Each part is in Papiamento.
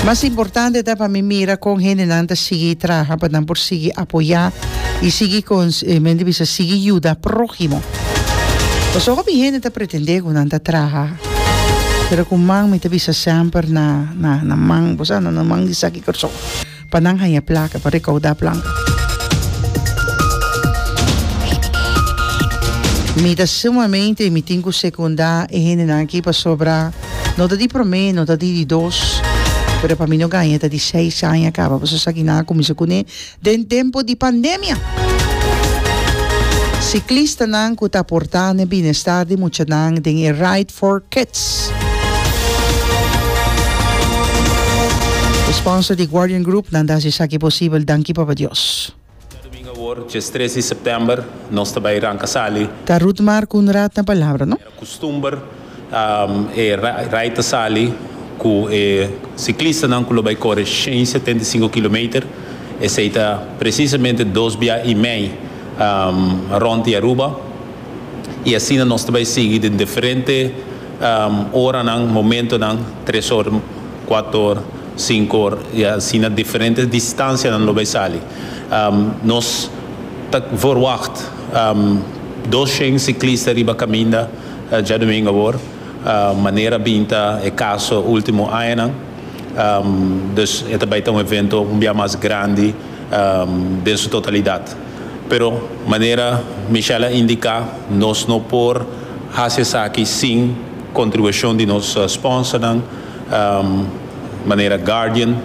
Mas importante ta pa mi mira con hendenan ta sigui traha pa nan por sigui apoya y sigui men ta bisa sigui yuda prohimo. Pasobra hopi hende ta pretende cu nan ta traha pero cu man mi ta bisa semper na man, bosa na nan man di sa kico razon. Pa nan haña plaka pa rekaudá planga. Mi ta sumamente mi tin ku sekundá e hendenan aki pasobra no ta di promé, no ta di di dos, pero pa mi no gaña ta di seis aña kaba. Boso sa kinan a kuminsá kuné den tempu di pandemia. Siklistanan ku ta aportá na e binestar di muchanan den e Ride for Kids. E sponsor di Guardian Group nan ta haci esaki posibel, danki Papa Dios. Dja domingo awor, djes tres di september, nos ta bai ranca sali. Ta Ruth Mar cu un rat na palabra, no? Era custumber e rai ta sali cu e ciclistanan cu lo bai core shen setenta i sinku kilometer, esey ta precisamente dos bia y mey rond di Aruba. y asina nos ta bay sigui den diferente oranan, momentonan, tres or, cuato or, cinco or, y asina diferente distancianan lo bay sali. Nos ta verwacht doshen ciclista riba caminda djadomingo awor, manera bin ta e caso ultimo añanan, dus e ta bay ta un evento un bia mas grandi den su totalidad. Pero manera Michelle a indica, nos no por haci esaki sin contribucion di nos sponsornan, manera Guardian,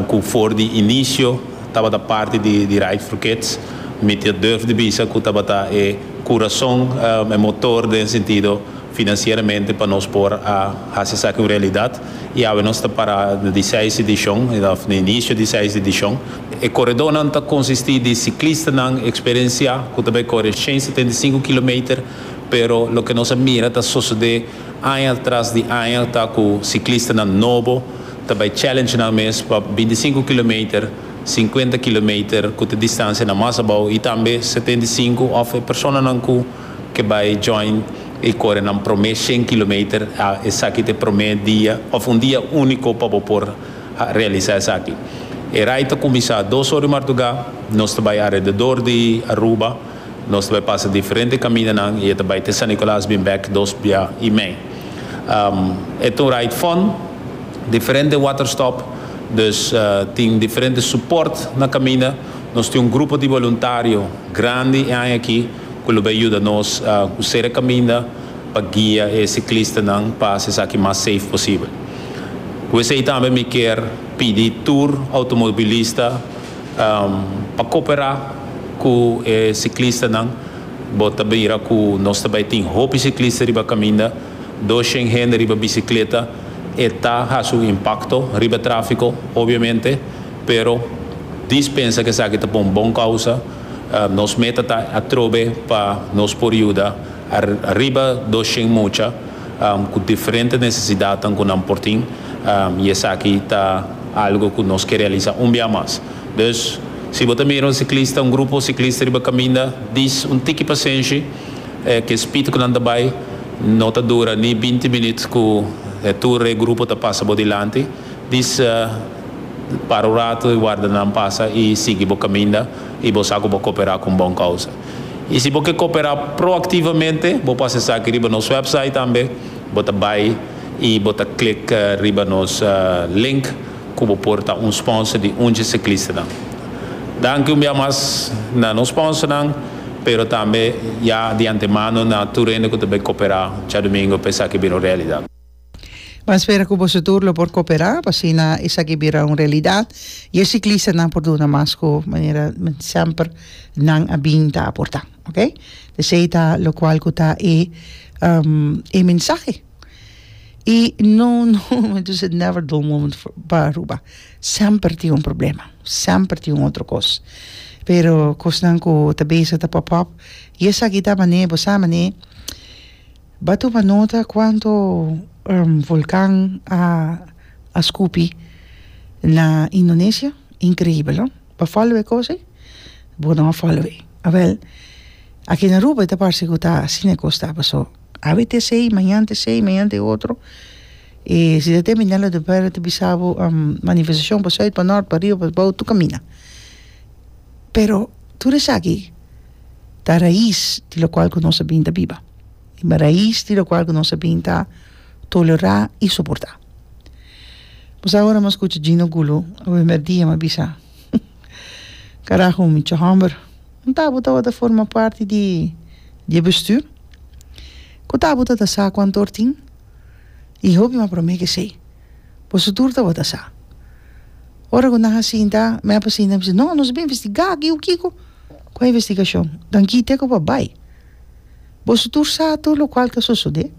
cu for di inicio tabata parti di Ride for Kids. Mi ta durf di bisa cu tabata e curazon, e motor den sentido. financieramente pa nos por a haci esaki un realidad y awe nos ta para na di seis edicion of na inicio di seis edicion. E coredonan ta consisti di ciclistanan experiencia cu ta bay core cien setenta y cinco kilometer pero loke nos a mira ta sosode aña tras di aña ta cu ciclistanan nobo ta bay challenge nan mes pa binti sinku kilometer, sinkuenta kilometer cu ta distancianan mas abao y tambe setenta y sinku of e personanan cu. ke bai join e korenan promé shen kilometer, a esaki ta e promé dia òf un dia úniko pa bo por a realisá esaki. E rai ta kuminsá dos or di martugá, nos ta bai alrededor di Aruba, nos ta bai pasa diferente kamindanan i e ta bai te San Nikolaas bin bèk dos bia i mei. E ta un rai fòn, diferente waterstòp, dus tin diferente supòrt na kaminda. Nos tin un grupo di boluntario grandi e aña aki. cu lo bay yuda nos cu sere caminda pa guia e ciclistanan pa haci esaki mas safe posibel. Cu esey tambe mi kier pidi tur automobilista pa coopera cu e ciclistanan. Bo ta mira cu nos ta bay tin hopi ciclista riba caminda, doshen hende riba bicicleta, e ta haci un impacto riba trafico obviamente. Pero, Dis pensa ku esaki ta pa un bon kousa. Nos meta ta atrobe pa nos por yuda riba doshen mucha ku diferente nesesidatnan ku nan por tin, i esaki ta algu ku nos ke realisá un bia mas. Dus, si bo ta mira un siklista, un grupo siklista riba kaminda, dis un tiki pasenshi. Ke spit ku nan ta bai no ta dura ni binti minüt ku tur e grupo ta pasa bo dilanti. Disa, para un ratu i warda nan pasa i sigui bo kaminda i bo sa ku bo koperá ku un bon kousa. I si bo ke koperá proaktivamente, bo por hasi esaki riba nos wèpsait tambe. Bo ta bai i bo ta klik riba nos link ku bo por ta un sponsor di Undje Siklistanan. Danki un bia mas na nos sponsornan, pero tambe ya di antemano na tur hende ku ta bai koperá djadumingu pa esaki bira un realidat. Bo a spera cu boso tur lo por coopera pa asina esaki bira un realidad y e ciclistanan por duna mas cu manera semper nan a bin ta aporta, ok. Esey ta locual cu ta e e mensahe. Y no no entonces is never dull moment for pa Aruba. Semper tin un problema, semper tin un otro cos. Pero cosnan cu ta bezig ta pop up y esaki ta mane bo sa mane Ba tuma nota cuanto volcan a scupi na Indonesia, increibel no? Ba follow e cosa ei? Bo no a follow ei. A wel, aki na Aruba ta parse cu ta asina e cos ta paso. Awe ta esey, mañan ta esey, mañan ta e otro. E CTT Minera de Ora ta bisa bo manifestacion pa suid, pa nort, pa ariba, pa bou tur camina. Pero tur esaki. ta rais di lokual ku nos a bin ta biba. Riba rais di lokual ku nos a bin ta tolerá i soportá. Bo sa ora mi a skucha Gino Gulo e primer dia mi a bisa, Karaho mi cho hòmber, ku ta bo tabata forma parti di di e bestür? Ku ta bo tabata sa ku antor tin? I hopi mi a promé ke esei. Bo su tur tabata sa. Ora ku nan a sinta, mi a sinta, mi a bisa, No, nos a bin investigá, ke yo kiko. Cu e investigacion dan kite cu pa bay? Boso tur sa tur locual ta sosode.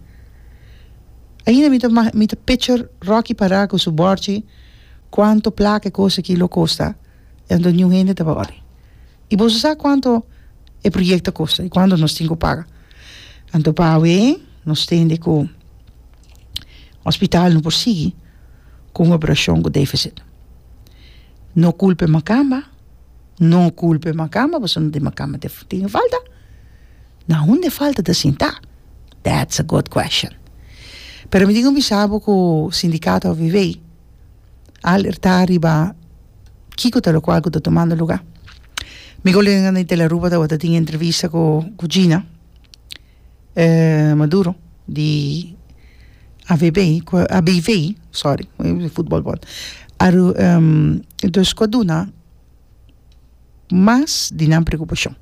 Ainda mi ta ma mi ta picture Rocky para cu su borchi cuanto placa e cos aki lo costa y anto new hende ta bay. Y boso sa cuanto e project ta costa y cuanto nos tin cu paga. Anto pa awe nos tende cu hospital no por sigui cu un operacion cu deficit. No culpa e macamba. No culpa e macamba pasobra no tin macamba te tin falta na hunde falta ta sinta that's a good question pero mi tin cu bisa bo cu sindicato avv alerta riba kico ta locual cu ta tomando lugar mi colega di De La Rubra tawata tin entrevista cu Gina Maduro di avb ABV sorry futbolbord aru dus ku a duna mas di nan preokupashon.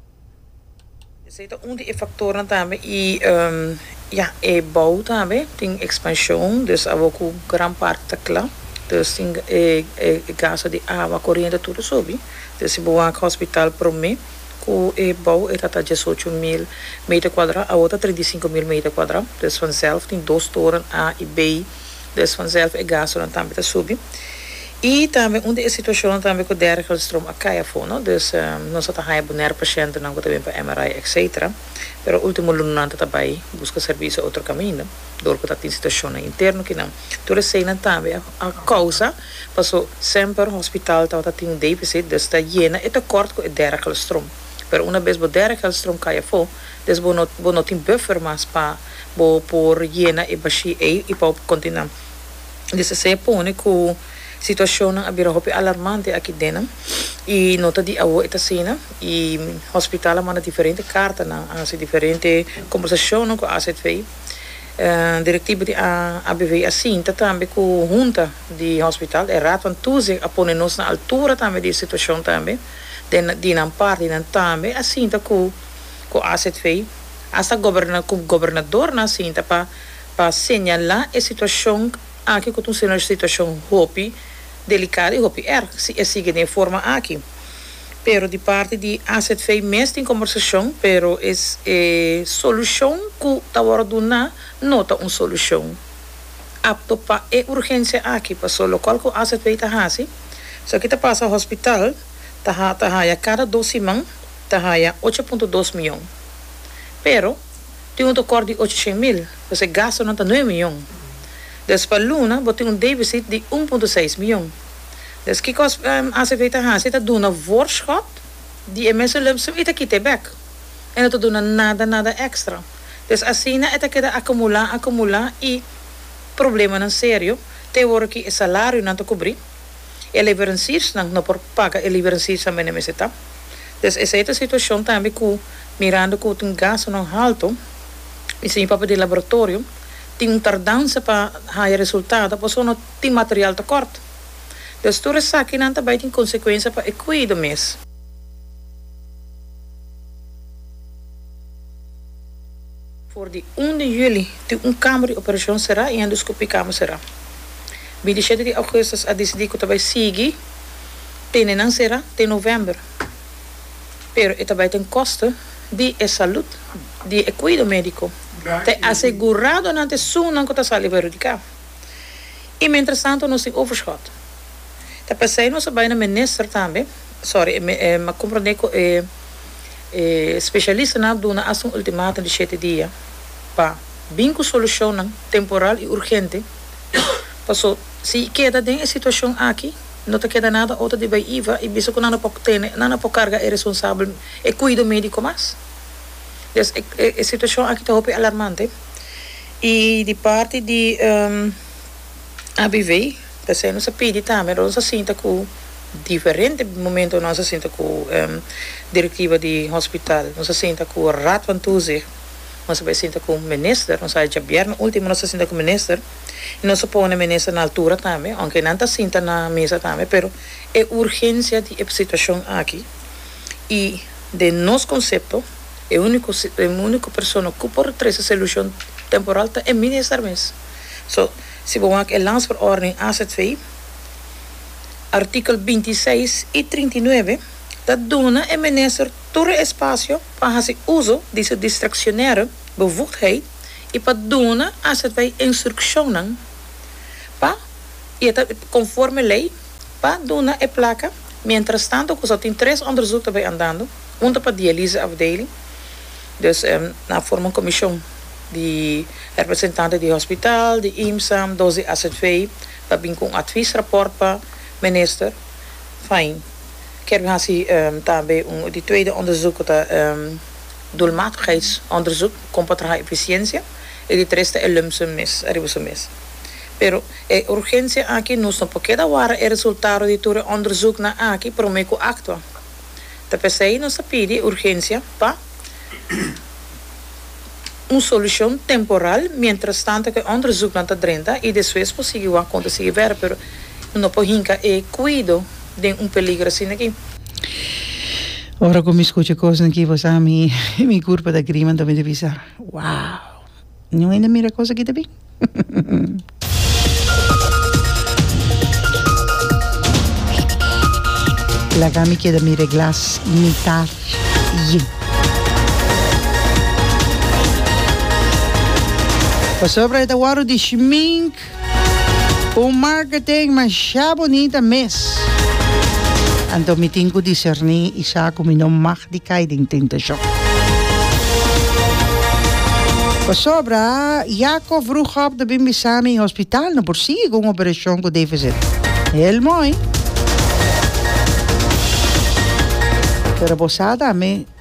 Esei ta un di e faktornan tambe i ya e bou tambe tin ekspanshon dus awor ku gran parti ta kla dus tin e gasto di awa koriente tur a subi dus si bo wak hospital prome. Ku e bou e ta ta diesocho mil meter kuadra, awor ta treinta i sinku mil meter kuadra. Des vanzelf tin dos toren A i B. Des vanzelf e gastonan tambe ta subi. I tambe un di e situashonnan tambe ku dergelstroom a kai afó, no. Dus nos a ta haña Bonaire pashentenan ku ta bini pa MRI etsetera. Pero último luna nan ta ta bai buska servisio otro kaminda dor ku ta tin situashonnan interno kinan. Tur eseinan tambe a kousa. Paso semper un hospital tabata tin deficit des ta yena e tekort ku e dera kelstrom. Pero una bes bo dera kelstrom kai afó, des bo no bo no tin buffer mas pa bo por yena e bashi ei i pa bo por kontinua. Des a ser pone ku situashonnan a bira hopi alarmante aki dena i no ta di awo e ta asina i hospital a manda diferente kartanan, a hasi diferente kombersashonnan ku asv. Directivo di ABV a sinta tambe cu hunta di hospital, e raad van toezicht a pone nos na altura tambe di e situacion tambe, den di nan parti y nan tambe a sinta cu cu AZV, hasta goberna cu gobernador nan a sinta pa pa señala e situacion aki cu ta un situacion hopi delicado y hopi erg si e sigue den e forma aki. Pero di parti di azv mes tin combersacion pero e solucion cu ta worde duna no ta un solucion apto pa e urgencia aki paso locual cu azv ta haci so aki ta pasa hospital ta haya cada dos siman ta haya ocho punto dos miyon pero tin un tocor di ocho shen mil paso e gastonan ta nuebe miyon despa luna bo tin un deficit di un punto seis miyon. Dus kikos ACV ta hasi e ta duna voorschot di e mesulumsum i ta kita e bek. E no ta duna nada nada extra. Dus asina e ta keda acumula acumula i problemanan serio te wor ki e salarionan ta cubri, e leverensiersnan no por paga e liverensiers tambe nan mester ta. Dus esei ta situacion tambe cu mirando cu tin gastonan halto i señor papel di laboratorio tin un tardansa pa haya resultado pasobra no tin material tekort. Des tur esakinan ta bai tin konsekuensia pa e kuido mes. For di un di juli tin un kamber di operashon será i endoskopi kamber será. Bin di shete di ougustus a disidí ku ta bai sigui tene nan será te novèmber, pero e ta bai den koste di e salud di e kuido médiko te aseguradonan te sunnan ku ta sali perhudiká. I mientrestanto nos tin overschot. Ta p'esei nos a bai na minister tambe, sorry, e m'a comprende cu e specialistanan a duna asta un ultimatum di shete dia pa bin cu solucionnan temporal i urgente, paso si e keda den e situacion aki no ta keda nada otro di bai iva i bisa cu nan a por tene, nan a por carga e responsabel, e cuido medico mas. Des e situacion aki ta hopi alarmante. Y di parti di ABV p'esey nos a pidi tambe ora nos a sinta cu diferente momentonan nos a sinta cu directiva di hospital nos a sinta cu Raad van Toezicht nos a bay sinta cu minister nos a hacha bierna ultimo nos a sinta cu minister y nos a pone minister na altura tambe aunke nan ta sinta na mesa tambe pero e urgencia di e situacion aki y den nos concepto. E único e único persona ku por trese selushon temporal ta e minister mes. So, si bo wak e Landsverordening azv, artikel binti i seis i trinta i nuebe ta duna e minister tur e espasio pa hasi uso di su diskresionere bevoegdheid i pa duna azv instrukshonnan pa, i e ta konforme lei, pa duna e plaka mientrastantu ku so tin tres onderzoek ta bay andando. Punta pa dialyse afdeling. Dus nan a forma un komishon di representante di hospital, di IMSA, dos di AZV pa bin ku un atvis raport pa minister. Fain kier bin hasi tambe di tweede onderzoek ku ta e doelmatigheidsonderzoek kon pa traha efisiensia i di tres ta e lump sum mes ariba su mes. Pero e urgensia aki nos no por keda wara e resultado di tur e onderzoeknan aki promé ku aktua. Ta p'esei nos ta pidi urgensia pa un solushon temporal mientras tanto ku e onderzuknan ta drenta i despues por sigui wak kon ta sigui wèr pero no por hinka e kuido den un peligro asina aki. Ora ku mi skucha kosnan aki pues a mi mi kurpa ta griman ta mi ta bisa wow. Niun hende a mira kos aki ta bin. Laga mi keda mira e glas mita yin. Pasobra e ta wòrdu di shmink. Un marketing masha bunita mes. Anto mi tin ku diserní i sa ku mi no mag di kai den tentashon. Pasobra Jacob Vroegop ta bin bisa mi hospital no por sigui ku un operashon ku defisit. Hel moi. Pero bo sa tambe.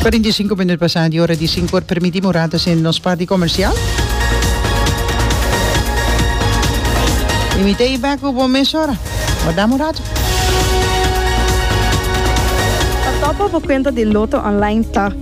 Cuarenta y cinco minuut pasá di ora di sinku or permití mi un ratu hasiendo nos parti comercial. Y mi ta ey bek cu bo mesora. Bo dam un ratu. Pa topa bo cuenta di Lotto Online ta.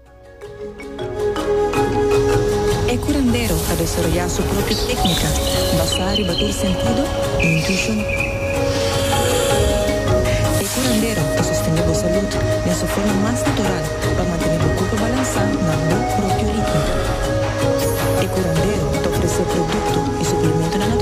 E curandero a desaroyá su propio técnica basá riba tur sentido i intuishon. E curandero ta sostendé bo salud den su forma mas natural pa mantené bo kurpo balansá na bo propio ritmo. E curandero ta ofresé produkto i suplementonan natural.